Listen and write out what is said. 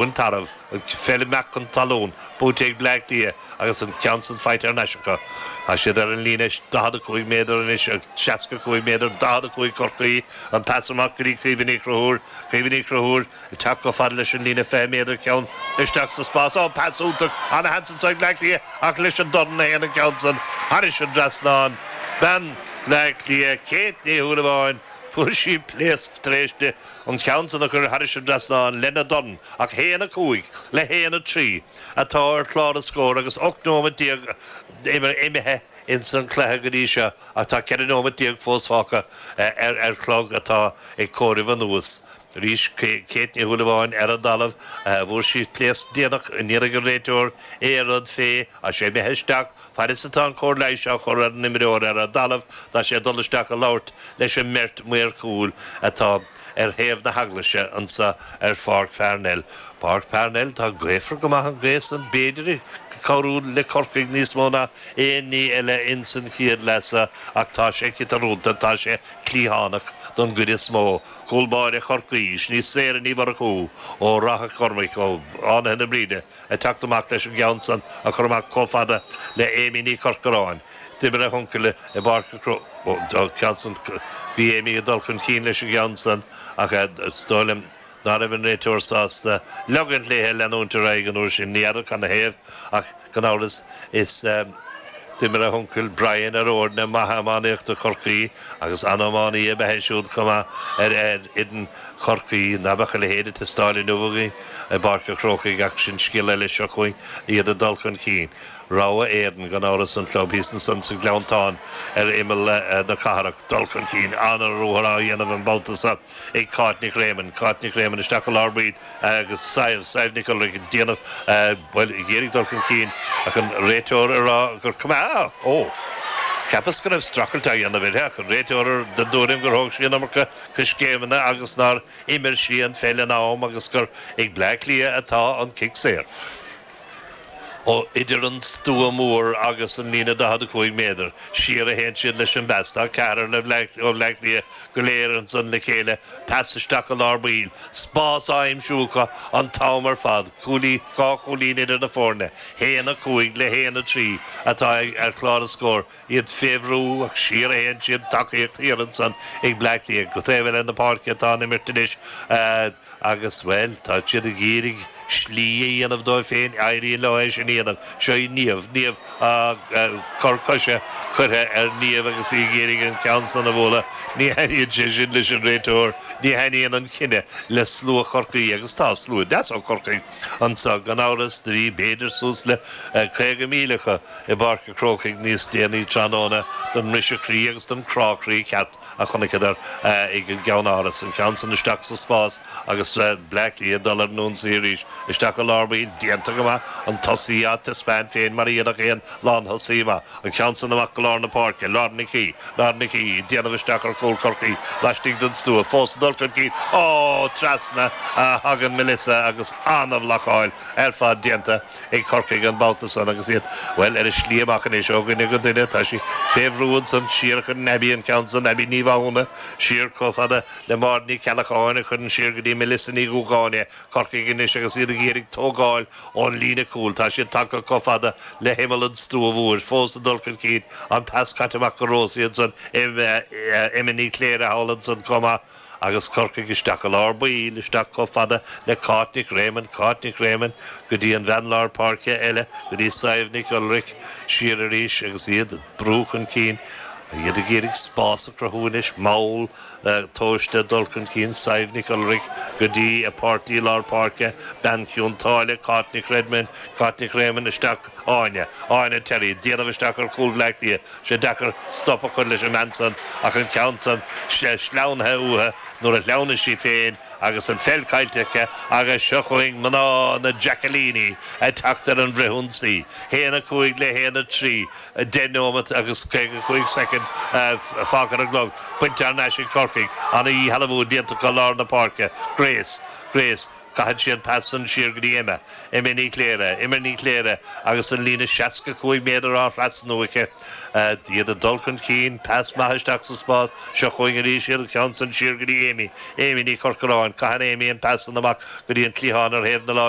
An Tarbh, an pheil ag imeacht fan talún, buaite ag Bleá Cliath agus an ceann san faighte ar n-ais acu. Tá siad ar an líne 45 méadar anois agus 65 méadar 45 Chorcaí, an pas amach go dtí Caoimhe Ní Chonchúir, Caoimhe Ní Chonchúir ag teacht chomh fada leis an líne 20 méadar ceann isteach sa spás. Ó, pas iontach an-sheans anso ag Bleá Cliath ach leis an dorn a théann an ceann san thairis an dtrasnán. Bean Bhleá Cliath, Kate Ní Shúilleabháin, fuair sí pléasc tar éis di an ceann san a chuir thairis an dtrasnán lena dorn, ach a haon 5 le haon 3 atá ar chlár an scóir agus 18 nóiméad imithe ins an chluiche go dtí seo ach tá 14 nóiméad fós fágtha ar chlog atá ag comhaireamh anuas arís. Kate Ní Shúilleabháin ar an dtalamh, fuair sí pléasc déanach, ní dúirt an réiteoir aon rud fé ach sé imithe isteach, Fad is atá an cóir leighis á chur ar an imreoir ar an dtalamh, tá sé ag dul isteach ag labhairt leis an mbeirt maor chúil atá ar thaobh na heaglaise anseo ar Pháirc Pharnell. Páirc Pharnell, tá gaofar go maith an gaoth san, b'fhéidir ag cabhrú le Corcaigh níos mó ná aon ní eile ins an chéad leath seo ach tá sé ciotarúnta, tá sé cliathánach don gcuid is mó. Cúl báire Chorcaí, sin í Sarah Ní Mhurchú ó Ráth Chormaic, ó Fhánaithe na Bríde, Ag teacht amach leis an gceann san a chur amach comh fada le Amy Ní Chorcoráin. D'imir a huncail i bPáirc a Cró an ceann san. Bhí Amy ag dul chun cinn leis an gceann san ach is dóigh liom ná raibh an réiteoir sásta leogaint léithe a leanúint ar aghaidh an uair sin. Ní fheadar cad 'na thaobh ach gan amhras is d'imir a huncail, Brian, ar fhoirne maithe iománaíochta Chorcaí agus an-iománaí ab ea é siúd comh maith ar fhoireann. Chorcaí, ná beadh a leithéid ag teastáil inniu againn i bPáirc an Chrócaigh ach sin scéal eile seo chugainn, iad ag dul chun cinn. Rogha Éireann, gan amhras, an club thíos ansan sa Ghleanntán ar imeall na cathrach. Dul chun cinn an-ruathar á dhéanamh an babhta seo ag Cáit Nic Réamoinn. Cáit Nic Réamoinn isteach go lár baill agus Sadhbh, Sadhbh Nic Ualghairg ag déanamh, bhuel, ag iarraidh dul chun cinn ach an réiteoir ag rá gur cuma, oh! Cheapas go raibh strachailt á dhéanamh uirthi ach an réiteoir den dtuairim gur thóg sí an iomarca coiscéimeanna agus nár imir sí an pheil in am agus gur ag Bleá Cliath atá an cic saor ó idir an stua mór agus an líne 45 méadar siar a théann siad leis an bpas. Tá ceathrar le Bhleá ó Bhleá Cliath go léir ansan le chéile, pas isteach go lár baill, spás á aimsiú acu an t-am ar fad, cúilí, dhá chúilín idir na foirne, 1, 5 le 1, 3 atá ar chlár an scóir. iad fé bhrú ach siar a théann siad tacaíocht thiar ansan ag Bleá Cliath go taobh eile na páirce atá an imirt anois agus, bhuel, tá siad ag iarraidh slí a dhéanamh dóibh féin, éiríonn leo é sin a dhéanamh. Seo í Niamh, Niamh, á, cor coise curtha ar Niamh agus í ag iarraidh an ceann san a bhualadh, ní thaitníonn sé sin leis an réiteoir, ní thaitníonn an cinneadh le slua Chorcaí agus tá slua deas ó Chorcaigh. Anso, gan amhras, do bhí b'fhéidir suas le 50,000 acu i bPáirc a' Chrócaigh níos déanaí tráthnóna don mbriseadh croí agus don crá croí cheart a chonaiceadar ag an gCeann-Áras, an ceann san isteach sa spás agus Bleá Cliath ag dul ar an ionsaí arís. Isteach i lár baill, déanta go maith, an tosaí á taispeáint féin mar a dhéanfadh aon lán-thosaí maith. An ceann san amach go lár na páirce, Lauren Nic Aoidh, Lauren Nic Aoidh, ag déanamh isteach ar chúl Chorcaí, laistigh den stua, fós ag dul chun cinn, Ó! Trasna a thagann Melissa agus ana-bhlocáil ar fad déanta ag Corcaigh an babhta san agus iad, bhuel, ar a slí amach anois ó dhuine go duine. Tá sí fé bhrú ansan, siar chun Abby, an ceann san, Abby Ní Mhathúna, siar chomh fada le Máire Ní Cheallacháin a chuireann siar go dtí Melissa Ní Dhúgáin é. Corcaigh anois agus iad ag iarraidh tógáil ón líne cúil. Tá siad tagtha chomh fada le himeall an stua mhóir. Fós ag dul chun cinn. An pas caite amach go Rosie ansan, Emma Ní Chléirigh thall ansan chomh maith. Agus Corcaigh isteach i lár baill, isteach chomh fada le Cáit Nic Réamoinn. Cáit Nic Réamoinn go dtí an bhean lár páirce eile, go dtí Sadhbh Nic Ualghairg. Siar arís agus iad ag brú chun cinn. Iad ag iarraidh spás a chruthú anois. Mall. Tomhaiste, dul chun cinn Sadhbh Nic Ualghairg go dtí a páirtí lár páirce, Bean Chionn tSáile, Cáit Nic Redmond, Cáit Nic Réamoinn, isteach Áine, Áine Terry, déanamh isteach ar chúl Bhleá Cliath, sé deacair stop a chur leis an mbean san ach an ceann san sleamhnaithe uathu nuair a shleamhnaigh sí féin agus an pheil caillte aici agus seo chugainn mná na Jackallíní ag teacht ar an bhfrithionsaí. 'Haon a cúig le haon a trí 10 nóimeat agus 55 soicind fágtha ar an gclog. Bainte thar n-ais ag Corcaigh. Ana-dhíshealbhú déanta acu i lár na páirce. Grace. Grace. Caitheann sí an pas san siar go dtí Emma. Emma Ní Chléirigh. Emma Ní Chléirigh agus an líne 65 méadar á thrasnú aici. Iad ag dul chun cinn. Pas maith isteach sa spás. Seo chugainn arís iad. An ceann san siar go dtí Amy. Amy Ní Chorcoráin. Caitheann Amy an pas san amach go dtí an cliathán ar thaobh na láimhe.